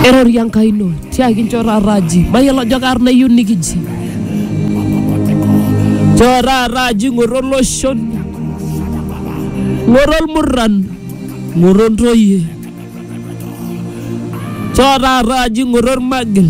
Erorie Enkai ino tiaki nchoo taata aji mayiolo ajo kaarna iyieu nikiji nchoo taata aji ng'oru oloshon ng'oru olmurran ng'oru ontoyie nchoo taata aji ng'oru ormagil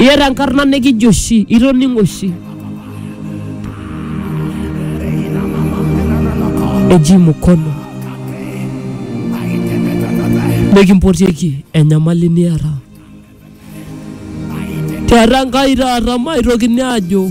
Iyata enkarna nikijo oshi, itoning'o oshi. Eji mkono. Nikimpotieki enyamali niata. Tiatua Enkai taata maitokini aajo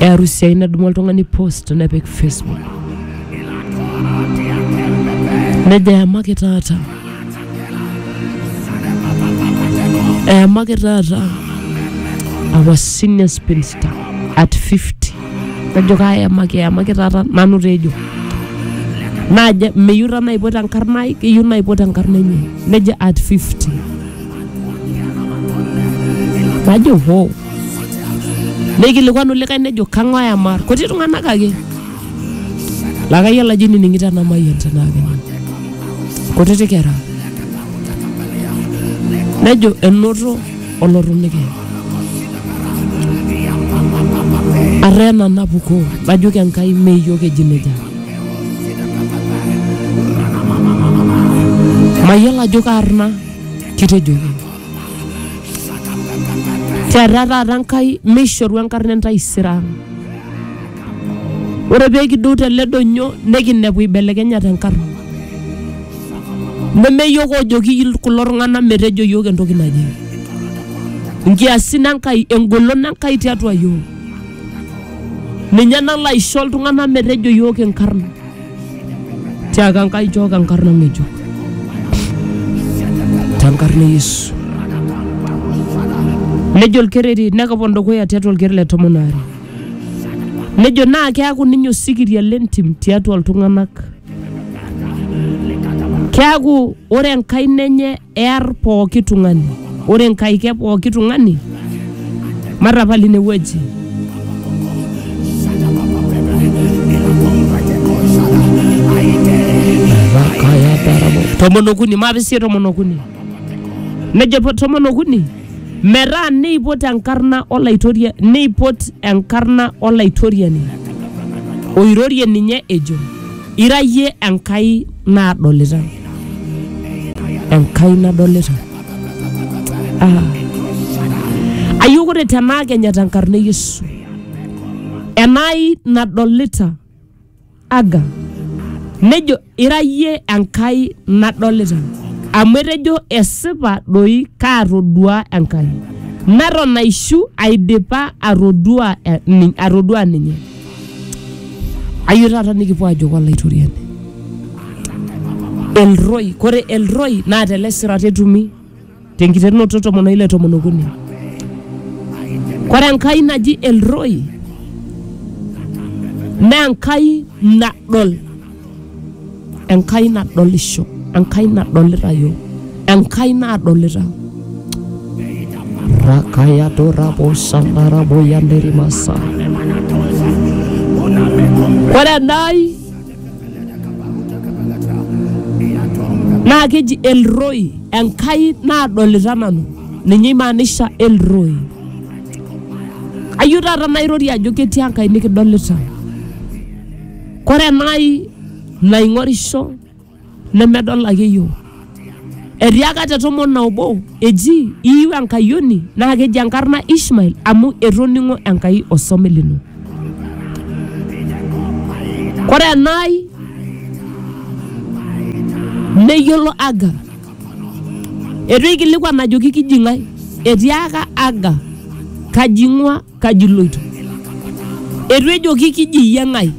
e arusi ai nadumu oltung'ani post nepik facebook nejo eyamaki taata eyamaki taata our senior spinster at 50 najo kaayamaki eyamaki taata nanu tejo najo meyieu taa naipot enkarna ai keyieu naipot enkarna enye nejo at 50 najo hoo neikilikwanu likae nejo kang'ae amar kuti tung'anak ake laa kayiolo ajo inining'ito ena mayian tenaa kenya kutiti kera nejo enoto olorunike arree nanapukoo najoki enkai meiyio keji nejia mayiolo ajo kaarna kitejoki keeta taata Nkai meishoru enkarna entaisere ang. Ore pee kidou tele donyo nikinepu eibelekenyate enkarna. Neme yiok oojoki kulo tung'anak metejo yiok entoki naje. Nkiasin Enkai, engolon Enkai tiatua yiok. Ninye nalo aisho iltung'anak metejo yiok inkarn. tiaka Enkai chooki enkarna ng'ejuk tenkarna e Yesu. Nejo olkereri nekipon dukuya tiatua olker le tomon aare. Nejo naa keaku ninye osikiria le ntim tiatua iltung'anak. Keaku ore enkaina enye ear pooki tung'ani. Ore Nkai ke pooki tung'ani, matapal ine wueji. Tomon okuni, maapisie tomon okuni. Nejo po- tomon okuni, metaa neipot enkarna olaitoria, neipot enkarna olaitoriani oirorie ninye ejo. Ira iyie Enkai naadolita, Enkai nadolita. Ah. Ayieu ore tenaa kenya tenkarna e Yesu, enai nadolita aga, nejo ira iyie Enkai nadolita, amu etejo esipa doi kaatodua Enkai, neton aishu aidipa atodua, eh, ni- atodua ninye. Ayieu taata nikipuo ajoki Olaitoriani. Elroi, kore Elroi naa tele sirat etumi tenkiterunoto tomon oile tomon okuni. Kore Enkai naji Elroi naa Enkai nadol Enkai nadolisho, Enkai nadolita yiok, Enkai naadolita. Rakaya dorabo sandarabo yanderimasa. Ore enai naa keji Elroi, Enkai naadolita nanu. Ninye imaanisha Elroi. Ayieu taata nairorie ajo ketii Enkai nikidolita. Kore enai naing'orisho nemedol ake iyiook. Etiaka te tomon na obo eji iyiu enkayioni naa keji enkarna Ishmael amu etoning'o Enkai osome lino. Kore enai neyiolo Agar, eitu eikilikuan ajoki kiji ng'ae, etiaka Agar kaji ing'ua kaji iloito etu ejoki kiji iyie ng'ae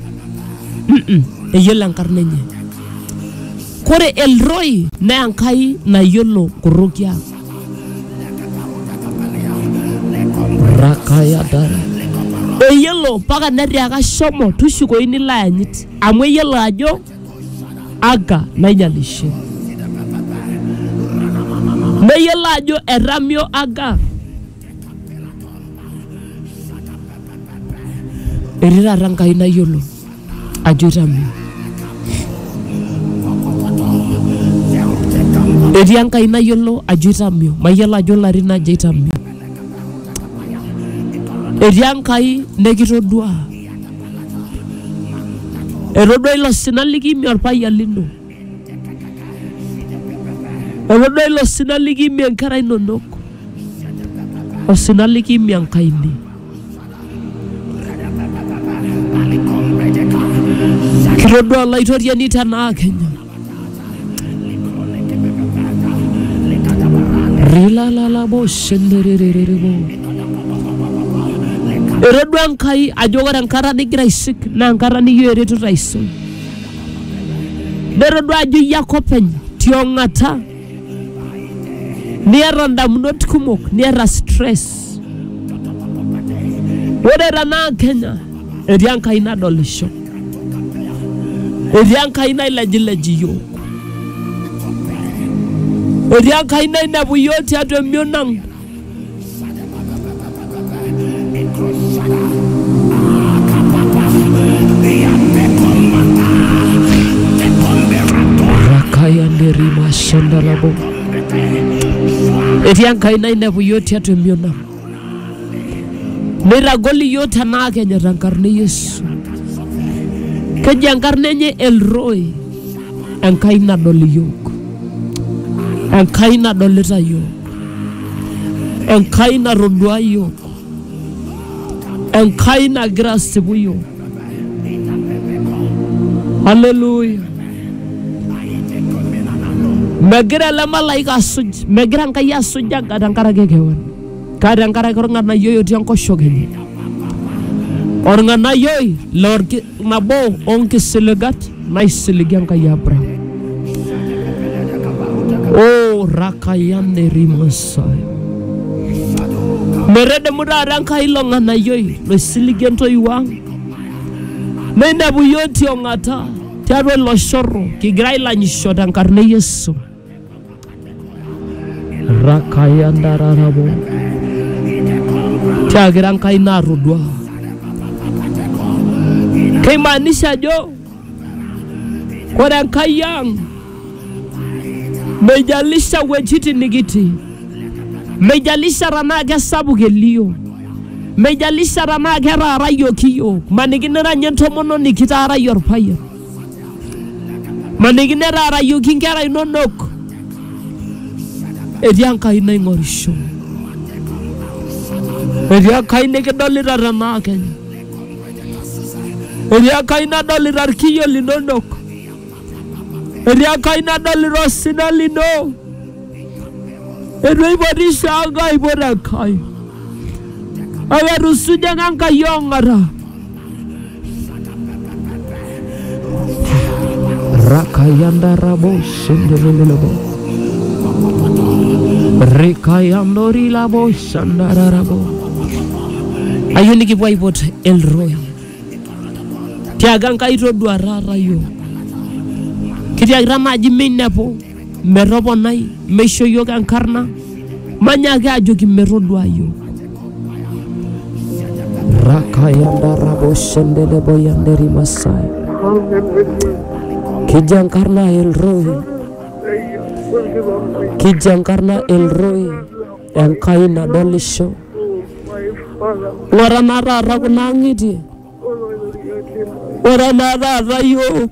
Mm-mm, eyiolo enkarna enye kore elroi naa enkai nayiolo korrokia rakayadara eyiolo mpaka netiaka shomo tushukoi nilo ayanyit amu eyiolo ajo aga nainyalishe neyiolo ajo etamio aga etii taata nkai nayiolo ajo itame etii enkai nayiolo ajo itamio mayiolo ajo larin aja itamio etii enkai nekitodua etodua ilo sina likimie orpayian lino Olodua ilo sina likiimie nkera inonok, osina likiimie enkaini. Kitodua Olaitoriani tenaa Kenya. Rilalalabo shenderererebo. Etodua Enkai ajo ore enkata nigira aisik naa enkata nikiyo eretoto aisul. Netodua ajo iyie ake openy tiong'ata niata indamunot kumok niata stress. Ore tenaa Kenya etii Enkai nadolisho, etii Enkai nailejilej iyiook, etii Enkai nainepu iyiook tiatua emion ang'. Kayanderiba shandalabo. Etii Enkai nainepu yiok tiatua emion ang. Neitagol iyiok tenaa kenyor tenkarna e Yesu. Keji enkarna enye El Roy. Enkai nadol iyiok. Enkai nadolita iyiok. Enkai natodua iyiook. Enkai nagira asipu iyiook. Haleluya. Megira ele malaika asuj, megira Enkai asuj enka- tenkaraki kewan. Kake tenkaraki orng'anayioi otii enkoshoke enye. Orng'anayioi lorki Nabo oo nkisiligat naisiliga Enkai Abraham. O rakayane rimasai. Metedemu taata Enkai ilo ng'anayioi loisiligie intoiwuo ang. Neinepu iyiook tiong'ata tiatua ilo shorro kigira ailanyisho tenkarna e Yesu. rakayandararabo tiakira enkai natodua keimaanisha ajo ore enkai ang meijalisha wuejitin nikitii meijalisha tenaa kesapuk elio meijalisha tenaa ketaarayioki iyiook maniki nira ninye entomononi kitaarayie orpayian Maniki netaarayioki inkera inonok etii Enkai naing'orisho, etii Enkai nikidolita tenaa kenya, etii Enkai nadolita ilkiyio linonok, etii Enkai nadolita osina lino. Eitu eipotisho Enkai aipot Enkai. Kake etusuja ake Enkai ong'ata. Rakayanda rabo shendelelelebo. Rikayandori labo shandararabo. Ayieu nikipuo aipot Elroy. Tiaga Enkai toduarara yiok. Kitiakita naaji meinepu metoponai meisho iyiook enkarna manyaaki ajoki metodua iyiook rakayandaraboshendeleboyanderi masai kijo enkarna elroi kijo enkarna elroi enkai nadolisho ng'ora naa taata kuna ang'itie ore naa taata iyiook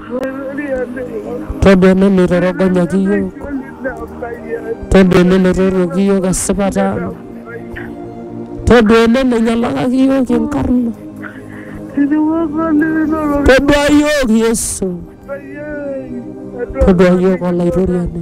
Todua ene neitorogonyaki iyiook. Todua ene neitoruoki iyiook esipata ang. Todua ene neinyalakaki iyiook inkarna. Todua iyiook Yesu. Todua iyiook Olaitoriani.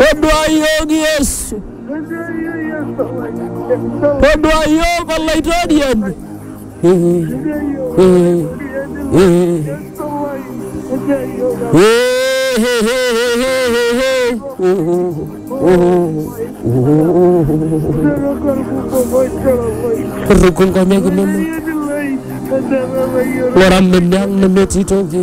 Toduayioki Yesu. Toduayioki Olaitoriani. Kurruku nkonyek inonok. Ng'ura mene ang' nemetii toki.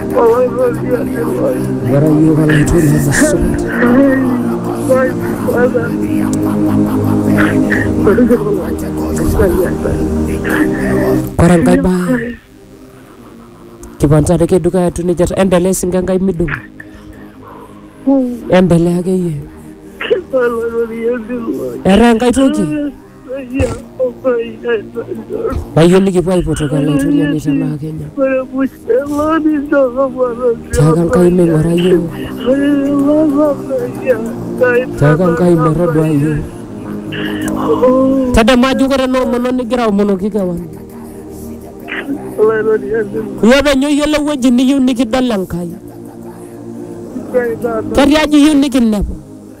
What are you going to do as a son? Kore enkae bae kipancha ake dukuya atiu nejia ta- endelea esinke enkai midung endelea akeyie etaa enkae toki Payie likipuo aipotok elaitoria metabaa Kenya. Tiaka Nkai meing'ura iyiook. Tiaka Nkai metodua iyiook. Tadamu ajo ore ena omono nigira aomonoki kewan. Iyie openy oyiolo ewueji niyieu nikidol Enkai. Ketiaji iyieu nikinepu.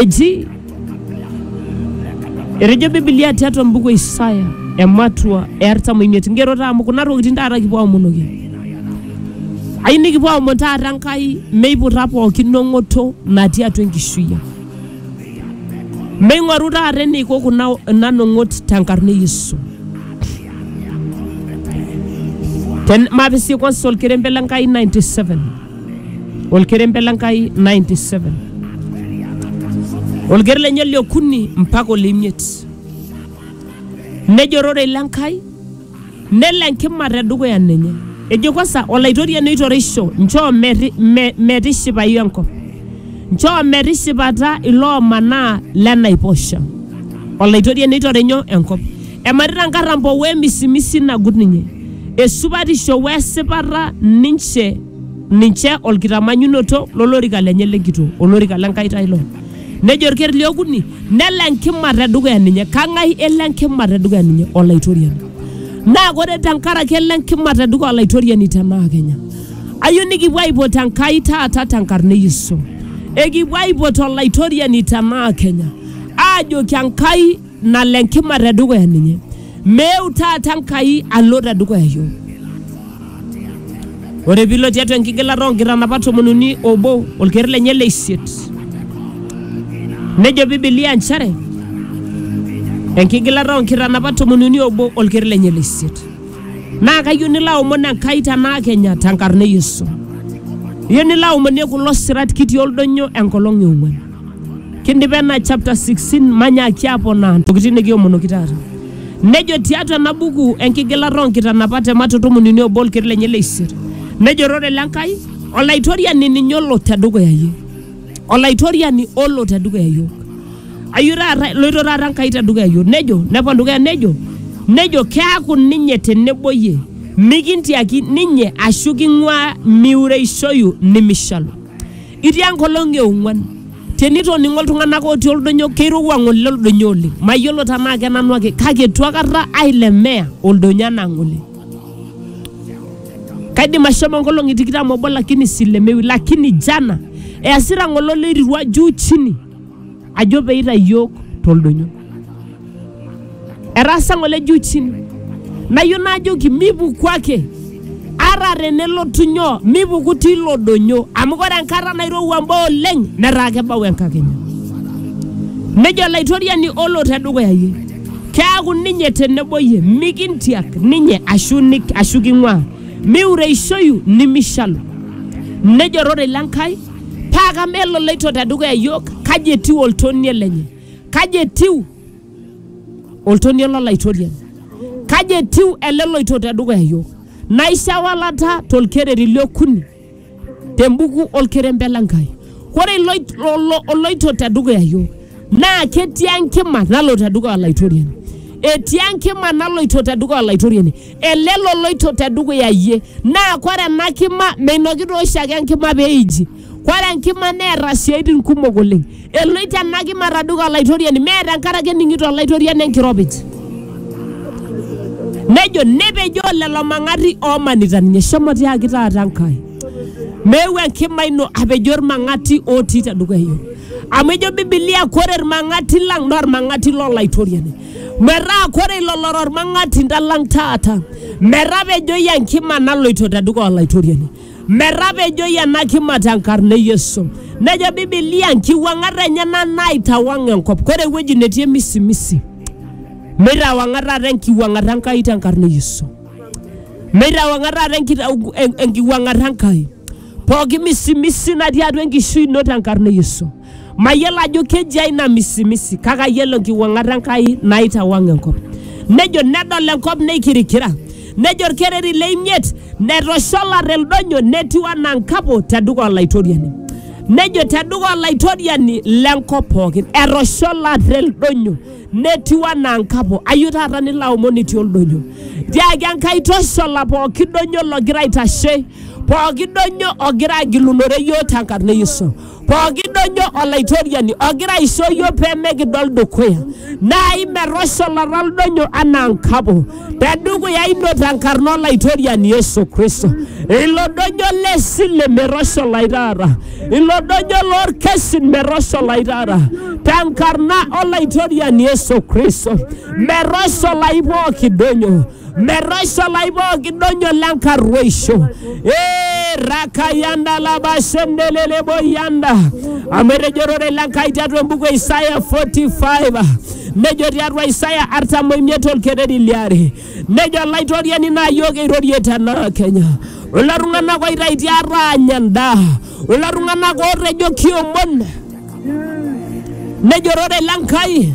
eji etejo bibilia tiatua mbuku e isaya ematua e artam oimiet ngero taa amu kuna tokitin taata kipuo aomonoki ayieu nikipuo aomon taata enkai meiputa pookin nong'oto natii atua enkishui ang meing'oru taata eneiko kuna ina nong'ot tenkarna e yesu Ten- mapisikosa olkerembe le nkai 97 Olkerembe le Nkai 97 olker lenye le okuni mpaka ole imiet nejo ororei le Nkai nelo enkima te dukuya ninye ejo kwanza olaitoriani oitoreisho nchoo meti- me- metishipayu enkop nchoo metishipata iloomanaa lenaiposha olaitoriani oitore nyoo enkop Ematita nkarrampo we misimisi nagut ninye, esupatisho we sipata ninche ninche olkitamanyunoto lo lorika lenye le nkitoo, olorika le Nkai taa ilo. Nejo olker li okuni, nelo enkima te dukuya ninye. Kang'ai elo enkima te dukuya ninye? Olaitoriani. Naa ore te nkaraki elo enkima te dukuya Olaitoriani te naa kenya. Ayeu nikipuo aipot Enkai taata te nkarna e Yesu. Ekipuo aipot Olaitoriani te naa kenya aajoki Enkai, nalo enkima te dukuya ninye. Meu taata Enkai alo te dukuya iyiook. Ore piilo tiatua enkigilata oo nkitanapat tomon uni obo olker lenye le isiet. Nejo Bibilia nchere enkigilata oo nkitanapat tomon uni obo olker lenye le isiet. Naa kayieu nilo aomon Enkai tenaa kenya tenkarna e Yesu. Iyieu nilo aomonie kulo sirat kitii oldonyo enkolong e ong'uan. Kindipa ena chapter 16 manyaaki aponaa ntokitin nikiomonoki taata. Nejo tiatua ena buku enkigilata oo nkitanapat e Mato tomon uni obo olker lenye le isiet. Nejo ororei le Nkai, Olaitoriani ninye olo tedukuya iyie. Olaitoriani olo tedukuya iyiook. Ayio taata eloito taata Enkai tedukuya iyiook. Nejo nepon dukuya nejo nejo keaku ninye tenebo iyie mikintiaki ninye ashu king'uaa miureishoyu nimishalu. Itii enkolong e ong'uan. Tenitoning'o iltung'anak otii oldonyo keirowua ng'ole oldonyo oleng. Mayiolo tenaa kenanu ake kake eitu akata ailemea oldonyo anaa ng'ole. Kaidim ashomo nkolong'i tikitam obo lakini silemewi lakini jana easita ng'ole oloirirua juu chini ajo pee eitayu iyiook toldonyo. Etaasa ng'ole juu chini, nayieu najoki mipuku ake ata tenelotu nyoo, mipuku tilo donyo amu ore enkata nairowua mbaa oleng netaa kebau enkakenya. Nejo Olaitoriani olo tedukuya iyie, keaku ninye tenebo iyie, mikintiak ninye ashu, nik, ashu king'uaa, miureishoyu nimishalu. Nejo ororei le Nkai. paa kama ele oloito te dukuya iyiook kaji etiu oltonie lenye kaji etiu oltonie lolaitoriani kaji etiu ele loito te dukuya iyiook naisho ewalata tolkereri le okuni tembuku olkerembe le Nkai ore iloit- olo- oloito te dukuya iyiook naa ketii enkima nalo te dukuya olaitoriani etii enkima naloito te dukuya olaitoriani ele loloito te dukuya iyie. Naa kore ena kima meinoki taa oshiake enkima pee eiji. Kore enkima neeta siaitin kumok oleng. Eloito ena kima te dukuya olaitoriani mee tenkaraki ening'ito olaitoriani enkiropij. Nejo nepejoo lelo mang'ati oomanita ninye. Shomo tiaki taata Enkai meeu enkima ino apejoo ilmang'ati ootii te dukuya iyiook. Amu ejo Bibilia kore ilmang'ati lang naa ilmang'ati lo laitoriani. metaa kore ilo lora olmang'atinda lang taata, metapejoi enkima naloito te dukuya Olaitoriani, metapejoi ena kima te nkarna e Yesu. Nejo Bibilia nkiwuang'at enyena naitawang enkop, kore ewueji netii emisimisi, meitawang'a taata enkiwuang'ata Enkai te nkarna e Yesu. Meitawang'a taata enkitau- en- enkiwuang'ata Enkai pooki misimisi natii atua enkishui ino te nkarna e Yesu. Mayiolo ajo kejia ina misimisi, kake ayiolo enkiwuang'ata Enkai naitawang enkop. Nejo nedol enkop neikirikira, nejo olkereri le imiet netosholate ildonyo netiu anaa nkapo te dukuya Olaitoriani. Nejo te dukuya Olaitoriani le nkop pooki, etosholate ildonyo netiu anaa nkapo. Ayieu taata nilo aomon itii oldonyo, tiaki Enkai toshola pooki donyo logira aitashe, pooki donyo ogira agilunore iyiook te nkarna e Yesu. Pooki dojo Olaitoriani ogira aisho iyiook pee mikidol dukuya, naa imetosholata oldonyo anaa nkapo te dukuya ino te nkarna Olaitoriani Yesu Kristo. Ilo dojo le sile metosholai taata, ilo dojo lolkesin metosholai taata te nkarna Olaitoriani Yesu Kristo, metosholai pooki dojo. metoisho laibok idonyo lenkarruoisho ee rakayanda labashendelele boyanda amu etejo ororei le Nkai tiatua embuku e Isaya 45 nejo tiatua Isaya artam oimiet olkereri liare nejo olaitoriani naa yiok eirorie tenaa Kenya kulo tung'anak oitaitia aanya endaa kulo tung'anak ootejo kiomon nejo ororei le Nkai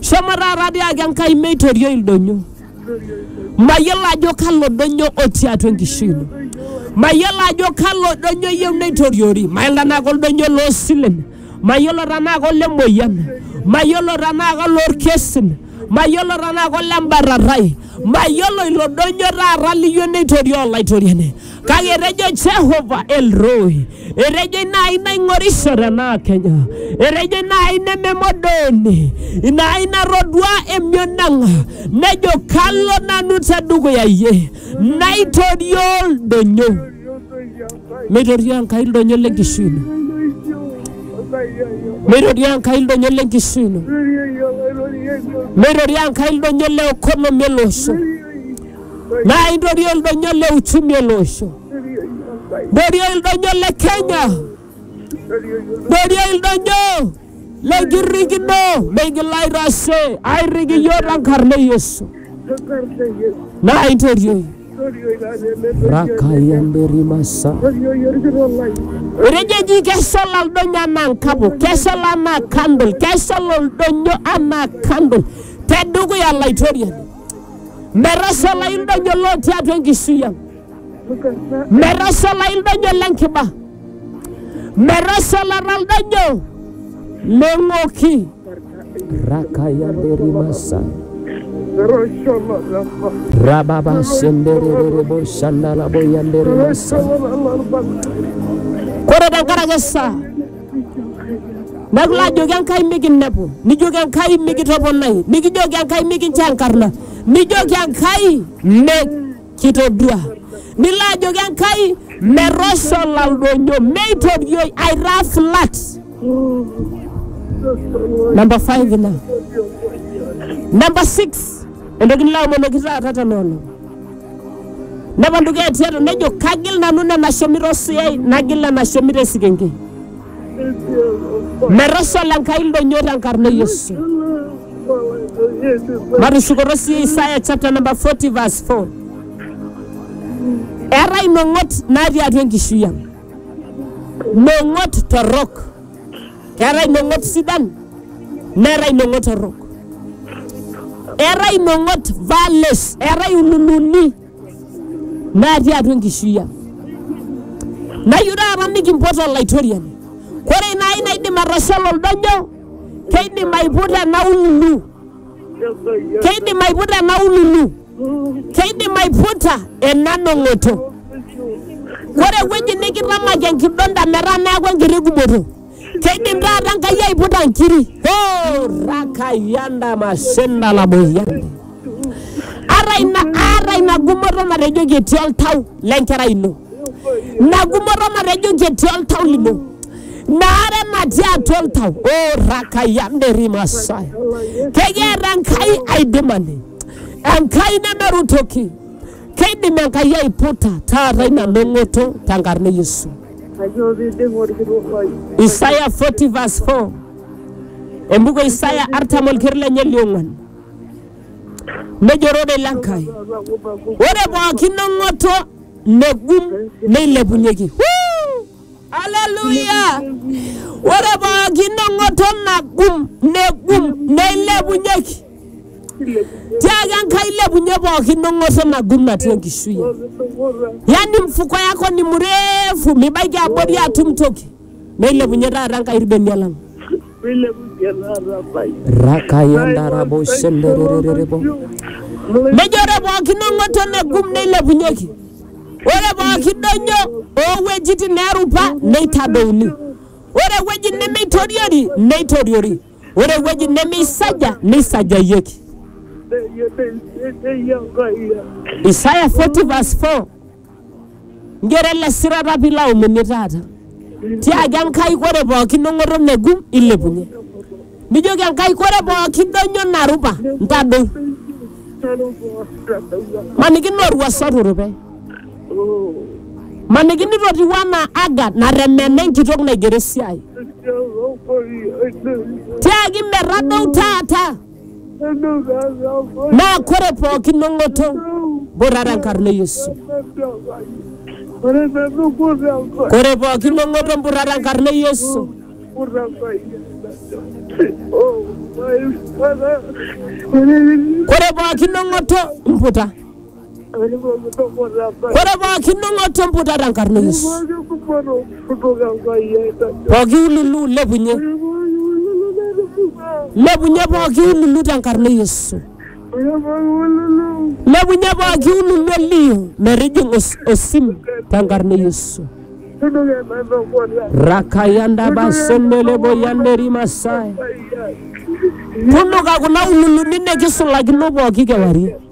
Shomo taata tiaki Enkai meitorioi ildonyo. Mayiolo ajo kalo donyo otii atua enkishui ino. Mayiolo ajo kalo donyo iyieu neitoriori. Mayiolo tenaa koldonyo loo silen. Mayiolo tenaa kolemoyian. Mayiolo tenaa kolorkesin. Mayiolo tenaa kolembarrarai. Mayiolo ilo donyo taata liyieu neitorioo Olaitoriani. kake etejo Jehova Elroy, etejo ina ai naing'orisho tenaa Kenya, etejo ina ai nememodooni, ina ai natodua emion ang', nejo kalo nanu te dukuya iyie, naitorioo ildonyo, meitorioo Enkai ildonyo le nkishui ino, meitorioo Enkai ildonyo le nkishui ino, meitorioo Enkai ildonyo le economy ele osho. naa intorioo ildonyo le uchumi ele osho, intorioo ildonyo le Kenya, intorioo ildonyo le nkirrikino meigil aitashe airrik iyiook te nkarna e Yesu naa intorioi rakayamberimasa etejo eji keshal oldonyo anaa nkapo keshal anaa kandol keshal oldonyo anaa kandol tedukuya laitoriani Metashalai ildonyo lotii atua enkishui ang. Metashalai ildonyo le nkiba. Metashalata ildonyo le ng'oki. Rakaya derimasa. Rababa sendererebo shandala boyanderemasa. Kore tenkaraki esaa nag laa jóge Enkai mikinepu nijoki Enkai mikitoponai nikijoki Enkai mikincho enkarna nijoki Enkai mikitodua nilo ajoki Enkai metoshola ildonyo meitorioi aitaa flat namba 5 ina namba 6 entoki nilo amonoki taata tena olong nepontu keetiato nejo kagil nanu nena shomito osuyai nagil nena shomito esikenke metashala enkai ildonyio tenkarna e yesu matushukoto sii isaya chapter number 40 verse 4 eetae inong'ot natii atua enkishui ang nong'ot torrok Keetae imong'ot sidan neetae imong'ot torrok. Eetae imong'ot values, eetae ululuni natii atua enkishui ang. Nayieu taata nikimpot Olaitoriani. Ore ina ai naidim atosholo oldonyo, keidim aiputa ena ululu. Keidim aiputa ena ululu. Keidim aiputa ena nong'oto. Ore ewueji nikitamaki enkidonda metaa neaku enkiti gumoto. Keidim taata Enkai aiputa nkiri. Oh, rakayanda masenda la boyande. Ata ina ata ina gumoto natejoki etii oltau lenkerai ino. Ina gumoto natejoki etii oltau lino. Naare natii atua oltau. Oh, rakayanda erimasai. Kekiata Enkai aidimani. Enkai nemeru toki. Keidim Enkai aiputa taata ina long'oto tenkarna e Yesu. Kayioo piidim olkitok lai. Isaya 40 verse 4. Embuku e Isaya artam olker lenye liong'uan. Nejo ororei le Nkai, ore pooki long'oto negum neilepunyeki. Huu! Aleluya! Ore pooki neng'oto nagum, negum, neilepunyeki. Tiaki Enkai ilepunye pooki nong'oto nagum natii enkishui. Yaani mfuko yako ni mrefu, mibaiki abori atum toki. Neilepunye taata Enkai irbenia lang. rakayondarabo shenderererebo nejo ore pookin ong'oto negum neilepunyeki ore pooki donyo oowuejitin neerupa neitadouni ore ewueji nemeitoriori neitoriori ore ewueji nemeisaja neisajayieki Isaya 40 verse 4 Njere ele sirata pee ilo aomoni taata. Tiaki Enkai ore pookin ong'oto megum ilepunye. Nijoki Enkai ore pookin donyo narupa ntadou. Maniki naa olwuasa oturupe. Maniki nitotiwuo anaa Aga natemena enkitok naigero esiai. Tiaki metadou taata. naa kore pookin nong'oto borrara enkarna e Yesu. Kore pookin nong'oto borrara enkarna e Yesu. Kore pookin nong'oto mputa. Ore pooki ning'oto emputata enkarna e Yesu. Pooki ululu lepunye. Lepunye pooki ululu tenkarna e Yesu. Lepunye pooki ululu elio metijing'a os osim tenkarna e Yesu. Rakayanda basendele boyanderi masai. Tunuka kuna ululuni nikisulakino pooki kewarie.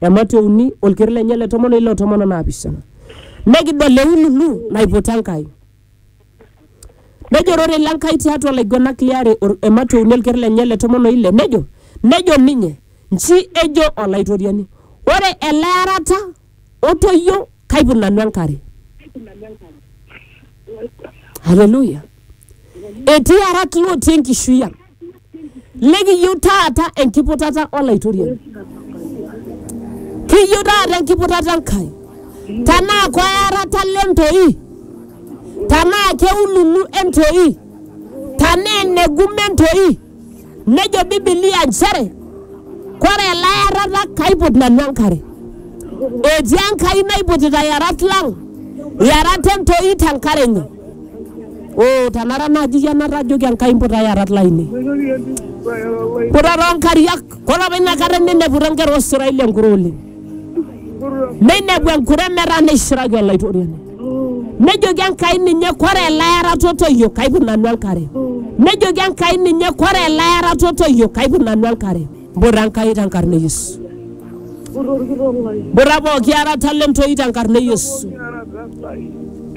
Ematua e uni, olker lenye le tomon o ile o tomon o naapishana. Nekidol eululu naiputa Enkai. Nejo ororei le Nkai tiatua laiguenak liare, ematua e uni olker lenye le tomon o ile, nejo, Nejo ninye, Nji ejo Olaitoriani, Ore ele arata otoyio kaiput nanu enkare. Haleluya! Etii arat lootii enkishui ang. Nikiyieu taata enkiputata Olaitoriani. Kiyieu taata enkiputata Enkai. Tenaa koyarata le ntoi, tenaa keululu entoi, tenaa enegume entoi, nejo Bibilia nchere kore elayarata kaiput nanu enkare. Etii Enkai naiputita yarat lang, yarat entoi tenkare enye. Oh, tanara naji ya natajoki Enkai mputa yarat lainei. Puta too nkariak. Kore apa ina kata neineputa inkera oo Israeli enkure oleng. Neinepu enkure metaa neishiraki Olaitoriani. Nejoki Enkai ninye kore ele ara totoyio kaipik nanu enkare. Nejoki Enkai ninye kore ele ara totoyio kaipik nanu enkare. Mburra Enkai tenkarna e Yesu. Mburra pooki arata le ntoi tenkarna e Yesu.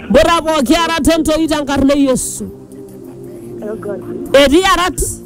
Mburra pooki arata e ntoi tenkarna e Yesu. Etii arat